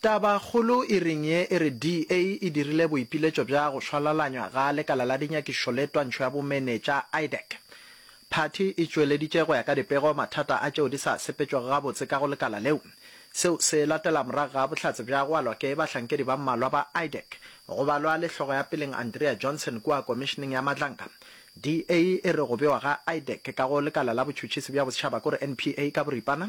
Tabakgolo e reng ye e re DA e dirile boipiletšo bja go šwalalanywa ga lekala la dinyakišo le twantšho ya bomenetša, IDEC. Phathi e tšweleditše go ya ka dipego mathata a tšeo di sa sepetšwego gabotse ka go lekala leo. Seo se latela morago ga bohlatse bja go alwa ke bahlankedi ba mmalwa ba IDEC, go balwa le hlogo ya peleng Andrea Johnson kua Komišeneng ya Matlanka. DA e re go bewa ga IDEC ka go lekala la botšhutšhisi bja bosetšhaba kore NPA ka boripana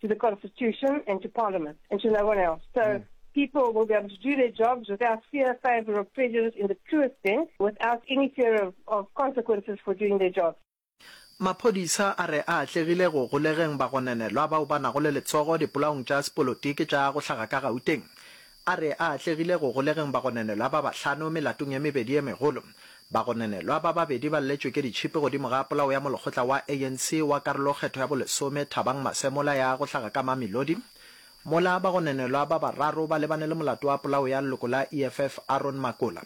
to the constitution and to parliament and to no one else. So mm. people will be able to do their jobs without fear, favor, or prejudice in the truest sense, without any fear of, of consequences for doing their jobs. Maphodisa a re a atlegile go golegeng bagonenelwa bao ba nago le letsogo dipolaong tša sepolotiki tša go hlaga ka Gauteng. A re a atlegile go golegeng bagonenelwa ba bahlano melatong ye mebedi e megolo. Bagonenelwa ba babedi ba lletšwe ke ditšhipi godimo ga polao ya molekgotla wa ANC wa karolokgetho ya bolesome Thabang Masemola ya go hlaga ka Mamelodi, mola bagonenelwa ba bararo ba lebane le molato wa polao ya leloko la EFF Aaron Makola.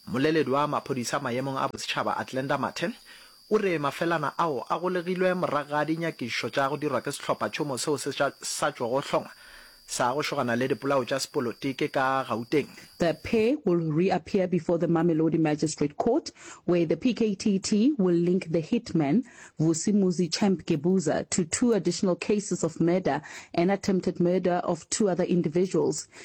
Mmoleledi wa maphodisa maemong a bosetšhaba Athlenda Mathe O re mafelana ao a golegilwe morago ga dinyakišišo tša go dirwa ke sehlophatšhomo seo se sa tšwago hlongwa sa go šogana le dipolao tša sepolotiki ka Gauteng. The pair will reappear before the Mamelodi Magistrate Court where the PKTT will link the hitman, Vusi Muzi Champ Gebuza, to two additional cases of murder and attempted murder of two other individuals,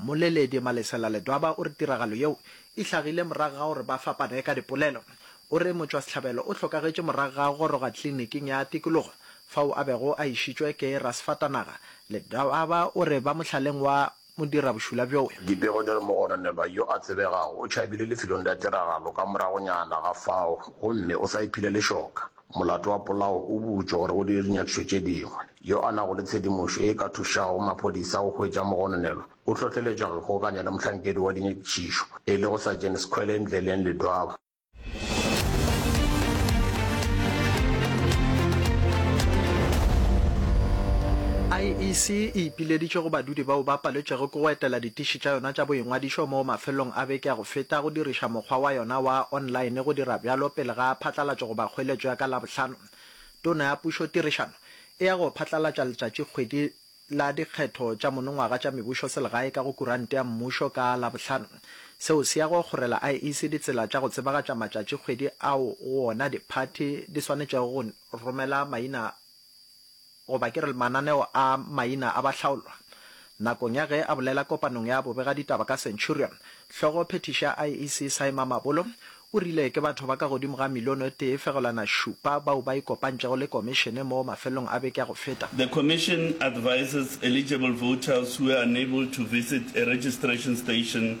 Mmoleledi Malesela Ledwaba o re tiragalo yeo e hlagile morago ga gore ba fapane ka dipolelo. O re motšwasehlabelo o hlokagetše morago ga go goroga tliliniking ya tikologo fao a bego a išitšwe ke rasfatanaga. Ledwaba o re ba mohlaleng wa modirabošula bjoo. Dipego di re mogononelwa yo a tsebegago o tšhabile lefelong la tiragalo ka moragonyana ga fao gomme o sa iphile lešoka. Molato wa polao o butšwe gore o dire dinyakišo tše dingwe. Yo a nago le tshedimošo ye e ka thušago maphodisa go hwetša mogononelo o hlohleletšwa go ikgokaganya le mohlankedi wa dinyakišišo, e lego Sergeant Skhwele Ndleleng Ledwaba. IEC e ipileditše go badudi bao ba paletšwego ke go etela ditiši tša yona tša boingwadišo moo mafelelong a beke a go feta go diriša mokgwa wa yona wa online go dira bjalo pele ga phatlalatšo goba kgoeletšo ya ka Labohlano. Tona ya Pušo Tirišano e ya go phatlalatša letšatšikgwedi la dikgetho tša monongwaga tša mebušoselegae ka go kurante ya mmušo ka Labohlano. Seo se ya go kgorela IEC ditsela tša go tsebagatša matšatšikgwedi ao go ona diphathi di swanetšego go romela maina goba ke re mananeo a maina a bahlaolwa. Nakong ya ge a bolela kopanong ya bobegaditaba ka Centurion, hlogo phethiši ya IEC Saima Mabolo o rile ke batho ba ka godimo ga milione o tee fegelwana šupa bao ba ikopantšego le Komišene mo mafelelong a beke ya go feta. The Commission advises eligible voters who were unable to visit a registration station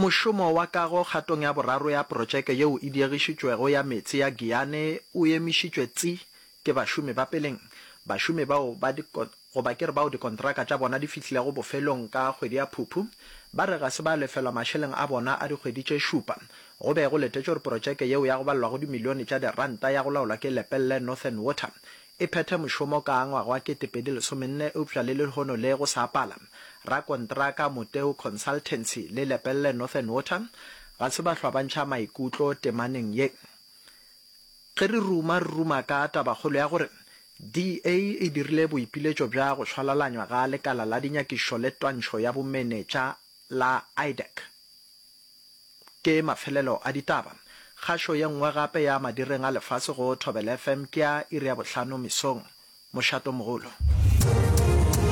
Mošomo wa kago kgatong ya boraro ya protšeke yeo e diegišitšwego ya meetse ya Giyane o emišitšwe tsi ke bašomi ba peleng, bašomi bao ba di goba ke re bao dikontraka tša bona di fihlilego bofelong ka kgwedi ya Phuphu ba re ga se ba lefelwa mašeleng a bona a dikgwedi tše šupa go be go letetšwe gore protšeke yeo ya go balelwa go dimilione tša diranta ya go laolwa ke Lepelle Northern Water e phethe mošomo ka ngwaga wa 2014 eupša le lehono le go sa pala rakontraka Moteu Consultancy le Lepelle Northern Water ga se ba hlwa ba ntšha maikutlo temaneng ye. Ge re ruma re ruma ka tabakgolo ya gore DA e dirile boipiletšo bja go šwalalanywa ga lekala la dinyakišo le twantšho ya bomenetša la IDAC. Ke mafelelo a ditaba. Kgašo ye nngwe gape ya madireng a lefase go Thobela FM ke ya iri ya bohlano mesong. Mošatomogolo.